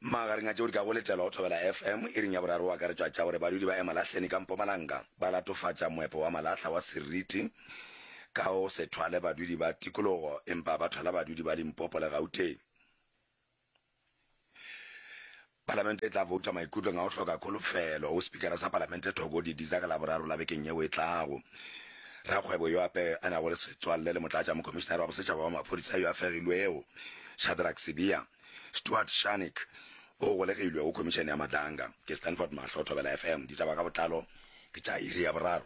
magareng a tšeo di ka go letela go thobela fm e ring ya boraro wa karetšwa tša gore badudi ba emalahleni ka mpomalanga ba latofatša moepo wa malahla wa seriti ka go se thwale badudi ba tikologo empa ba thwala badudi ba limpopo le gauteng Palamente e tla bouta maikutlong a go hloka kholofelo go Spikara sa Palamente Thoko Didiza ka Laboraro la bekeng yeo e tlago. Rakgwebo yo ape a nago le setswalle le Motlatšamokhomišinare wa Bosetšhaba wa Maphodisa yo a fegilwego, Shadrack Sibiya, Stuart Shannick, o golegilwe go Khomišene ya Madlanga. Ke Stanford Mahlo, Thobela FM, ditaba ka botlalo ke tša iri ya boraro.